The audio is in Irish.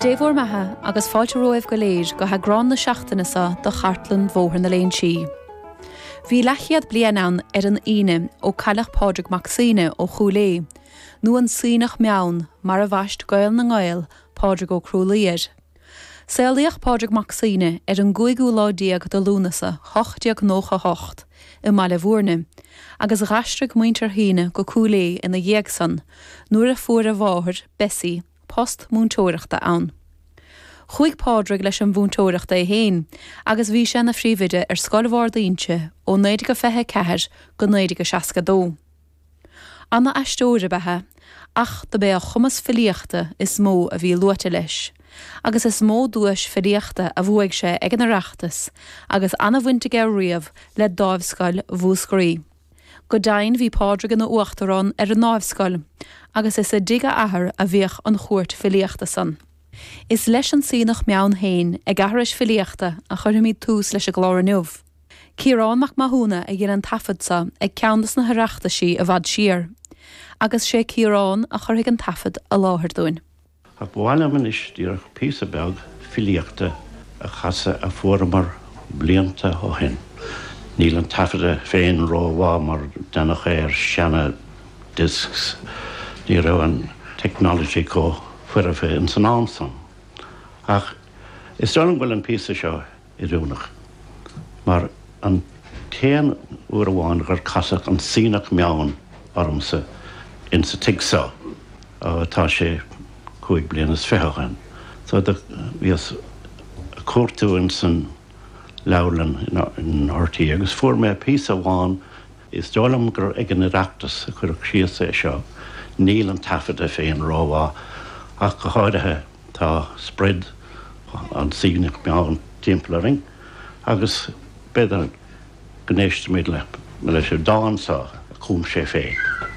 Dé bhur mbeatha agus fáilte romhaibh go léir go heagrán na seachtaine seo de Chartlann Bhóthar na Léinsí. Bhí leathchéad bliain ann ar an Aoine ó cailleadh Pádraig Mac Suibhne ó Chúil Aodh, nó an Suibhneach Meann mar a bhaist Gael na nGael, Pádraig Ó Crualaoí, air. Saolaíodh Pádraig Mac Suibhne ar an gcúigiú lá déag de Lúnasa 1898 i mBaile Mhúirne agus d'aistrigh muintir Shuibhne go Cúil Aodh ina dhiaidh san nuair a fuair a mháthair, Bessie, post múinteoireachta ann. Chuaigh Pádraig leis an mhúinteoireacht é féin agus bhí sé ina phríomhoide ar Scoil Bharr d'Inse ó 1924 go 1962. Ana-aisteoir ab ea é, ach dob é a chumas filíochta is mó a bhí luaite leis, agus is mó duais filíochta a bhuaigh sé ag an Oireachtas, agus ana-bhaint aige riamh le Dáimhscoil Mhúscraí. Go deimhin bhí Pádraig ina uachtarán ar an nDáimhscoil, agus is i dtigh a athar a bhíodh an Chúirt Filíochta san. Is leis an Suibhneach Meann féin, ag aithris filíochta, a chuirfimid tús leis an gclár inniu. Ciarán Mac Mathúna a dhein an taifead seo ag ceann de na hOireachtaisí i bhfad siar, agus sé Ciarán a chuirfidh an taifead i láthair dúinn. Ach ba mhaith liom anois díreach píosa beag filíochta a chasadh a fuaireamar blianta ó shin. Níl an taifead é féin ró-mhaith mar deineadh é ar sheana discs, ní raibh an technology comh foirfe ins an am san. Ach is dóigh liom go bhfuil an píosa seo, oiriúnach, mar an t-aon uair amháin gur casadh an Suibhneach Meann ormsa insa tigh so, ó tá sé cúig bliana is fiche ó shin, do bhíos a' cuartú insan leabharlann in RTÉ agus fuair mé píosa amháin, Is dóigh liom gur ag an Oireachtas a cuireadh síos é seo, níl an taifeadadh féin rómhaith ach go háirithe, tá sprid an tSuibhnigh Mheann timpeall orainn agus b'fhéidir go n-éistfimid leis an dán so a chum sé féin.